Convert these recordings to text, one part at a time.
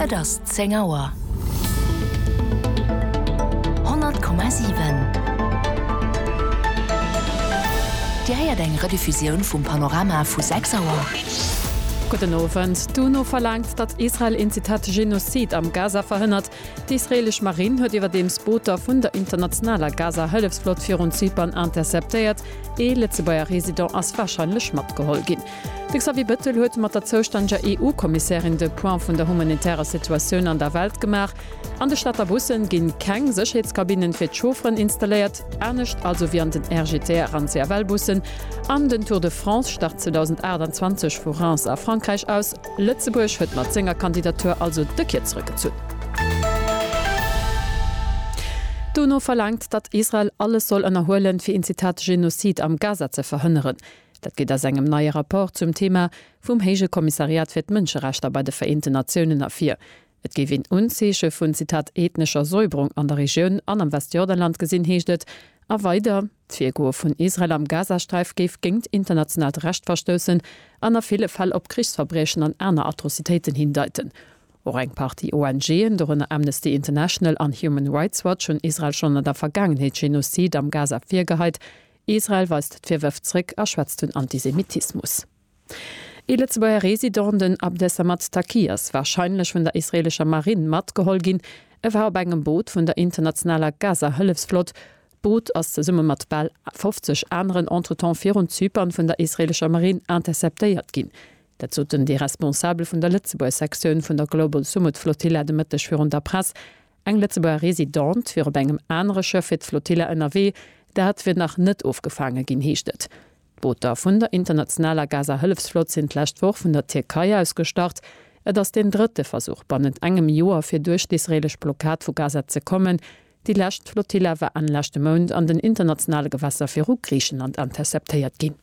Et ass zéng Auer. 100,7 Dir héiert eng Rediffusioun vum Panorama vu 6 Auer. Gudden Owend. D'UNO verlaangt, datt Israel een, Zitat, Genozid am Gaza verhënnert. D'israeelesch Marinn huet iwwerdeems Booter vun der internationaler Gaza-Hëllefsflott virun Zypern interceptéiert. Ee Lëtzebuerger Resident ass warscheinlech matgeholl ginn. De Xavier Bettel huet mat der zoustännëger EU-Kommissärin de Point vun der humanitärer Situatioun an der Welt gemaach. An de Stater Bussen ginn keng Sécherheetskabinnen fir d'Chaufferen installéiert, anescht also wéi an den RGTR an CFL-Bussen. An den Tour de France start 2028 vu Reims a Frankräich aus. Lëtzebuerg huet mat senger Kandidatur also de Kier zrëckgezunn. D'UNO verlaangt, datt Israel alles soll ënnerhuelen, fir een Zitat Genozid am Gaza ze verhënneren. Dat geet aus engem neie Rapport zum Thema vum Héije Kommissariat fir d'Mënscherechter bei de Vereenten Natiounen ervir. Et géif een Unzeeche vun, Zitat, ethnescher Säuberung an der Regioun an am Westjordanland gesinn, heescht et. A weider, D'Virgoe vun Israel am Gazasträif géif géingt internationaalt Recht verstoussen an a ville Fäll op Krichsverbriechen an aner Atrocitéiten hindeiten. Och eng Partie ONGen, dorënner Amnesty International an Human Rights Watch, hunn Israel schonn an der Vergaangenheet Genozid am Gaza virgeheit, Israel weist d'Virwërf zréck a schwätzt vun Antisemitismus. Ee Lëtzebuerger Resident, den Abdesamad Taqi, ass warscheinlech vun der israeelescher Marinn matgeholl ginn. E war op engem Boot vun der internationaler Gaza-Hëllefsflott. D'Boot ass zesumme mat bal 50 aneren entretemps virun Zypern vun der israeelescher Marinn interceptéiert ginn. Dat soten déi Responsabel vun der Lëtzebuerg-Sektioun vun der Global Sumud-Flotilla de Mëtteg virun der Press. Eng Lëtzebuerger Residente wier op engem anere Schëff fir d'Flotilla ënnerwee, dat wier nach net ofgefaange ginn, heescht et. D'Booter vun der internationaler Gaza-Hëllefsflott sinn d'lescht Woch vun der Tierkei aus gestart. Et ass deen drëtte Versuch bannent engem Joer, fir duerch d'israeelesch Blockad vu Gaza ze kommen. Déi lescht Flotilla war Enn leschte Mount an den internationale Gewässer viru Griichenland interceptéiert ginn.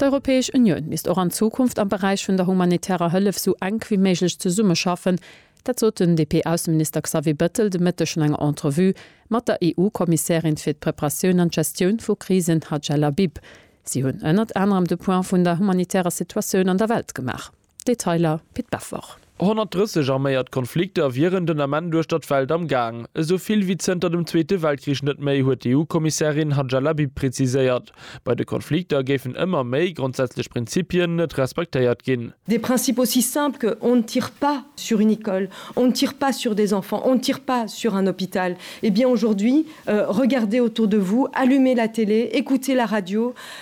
D'Europäesch Unioun misst och an Zukunft am Beräich vun der humanitärer Hëllef esou enk wéi méiglech zesummeschaffen. Dat sot den DP-Ausseminister Xavier Bettel de Mëtteg no enger Entrevue mat der EU-Kommissärin fir d'Preparatioun an d'Gestioun vu Krisen Hadja Labib. Si hunn ënnert anerem de Point vun der humanitärer Situatioun an der Welt gemaach. Detailer Pit Beffer. 130 arméiert Konflikter wieren den Ament uechter d'Welt am Gaang. Esou vill wéi zënter dem Zweete Weltkrich net méi, huet d'EU-Kommissärin Hadja Labib preziséiert. Bei de Konflikter géifen ëmmer méi grondsätzlech Prinzipien net respektéiert ginn. Des principes aussi simples que on ne tire pas sur une école, on ne tire pas sur des enfants, on ne tire pas sur un hôpital. Eh bien aujourd'hui, regardez autour de vous, allumez la télé, écoutez la radio,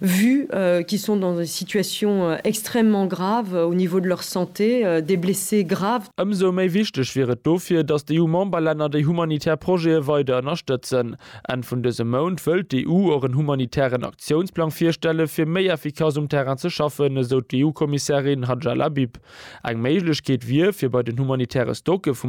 vue qu'ils sont dans des situations extrêmement graves au niveau de leur santé, des blessés graves. Ëmsou méi wichteg wier et dofir, datt d'EU-Memberlänner déi humanitär Projete weider ënnerstëtzen. Enn vun dësem Mount wëllt d'EU och en humanitären Aktiounsplang virstelle fir méi effikass um Terrain ze schaffen, esou d'EU-Kommissärin Hadja Labib. Eng Méiglechkeet wier, fir bei den humanitäre Stocke vu.